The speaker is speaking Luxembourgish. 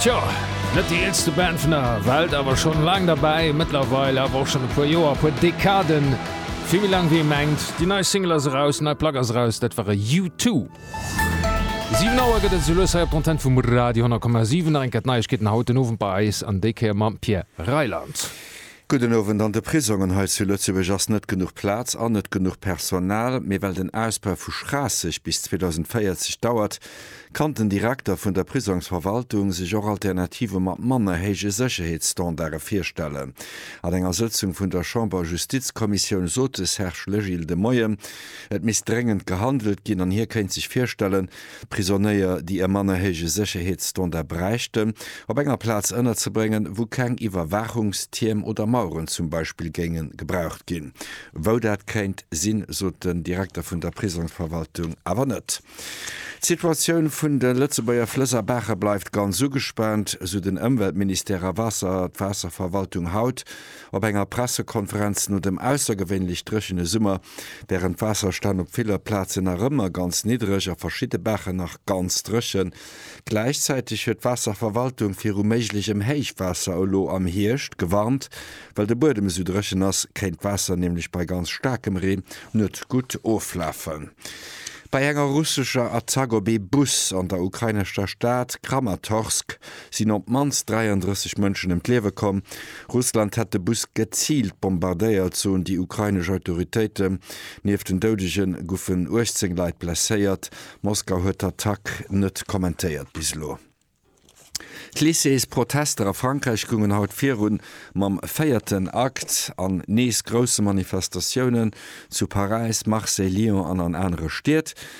Tjo, net déi eelste Band vun der Welt, awer schonn laang derbäi, mëttlerweil awer och schonn e puer Joer, e puer Dekaden, vill méi laang wéi ee mengt. Déi nei Single ass eraus, déi nei Plack ass eraus, dat war e U2. 7 Auer gëtt et soulues hei op d'Antenne vum Radio 10,7. Nach eng Kéier d'Neiegkeeten haut den Owend bei eis an déi Kéier mam Pierre Reyland. Gudden Owend, An de Prisongen hei zu Lëtzebuerg ass net genuch Plaz an net genuch Personal. Mee well den Ausbau vu Schraasseg bis 2040 dauert, kann den Direkter vun der Prisongsverwaltung sech och Alternative mat manner héije Sécherheetsstandarde virstellen. An enger Sëtzung vun der Chamber-Justizkommissioun sot de Serge Legil de Moien, et misst dréngend gehandelt ginn an hie kéint sech virstellen, Prisonéier, déi e manner héije Sécherheetsstandard bräichten, op enger Plaz ënnerzebréngen, wou keng Iwwerwaachungstierm oder Maueren zum Beispill géinge gebraucht ginn. Wou dat kéint sinn, sot den Direkter vun der Prisongsverwaltung awer net. D'Situatioun vun de Lëtzebuerger Flëss a Baache bleift ganz ugespaant, sou den Ëmweltministère a Waasserverwaltung haut op enger Pressekonferenz no dem aussergewéinlech dréchene Summer, Wärend d'Waasserstänn op viller Plazen nach ëmmer ganz niddreg a verschidde Baachen nach ganz dréchen, gläichzäiteg huet d'Waasserverwaltung viru méiglechem Héichwaasser elo am Hierscht gewarnt. Well de Buedem esou dréchen ass, kéint d'Waasser nämlech bei ganz staarkem Reen net gutt oflafen. Bei enger russescher Attack op ee Bus an der ukrainescher Stad Kramatorsk sinn op d'mannst 33 Mënschen ëm d'Liewe komm. Russland hätt de Bus geziilt bombardéiert, soen déi ukrainesch Autoritéiten. Nieft den Doudege goufen 18 Leit blesséiert. Moskau huet d'Attack net kommentéiert bis elo. D'Lycées-Protester a Frankräich goungen haut virun mam véierten Akt an nees grousse Manifestatiounen, zu Paräis, Marseille, Lyon an an anere Stied.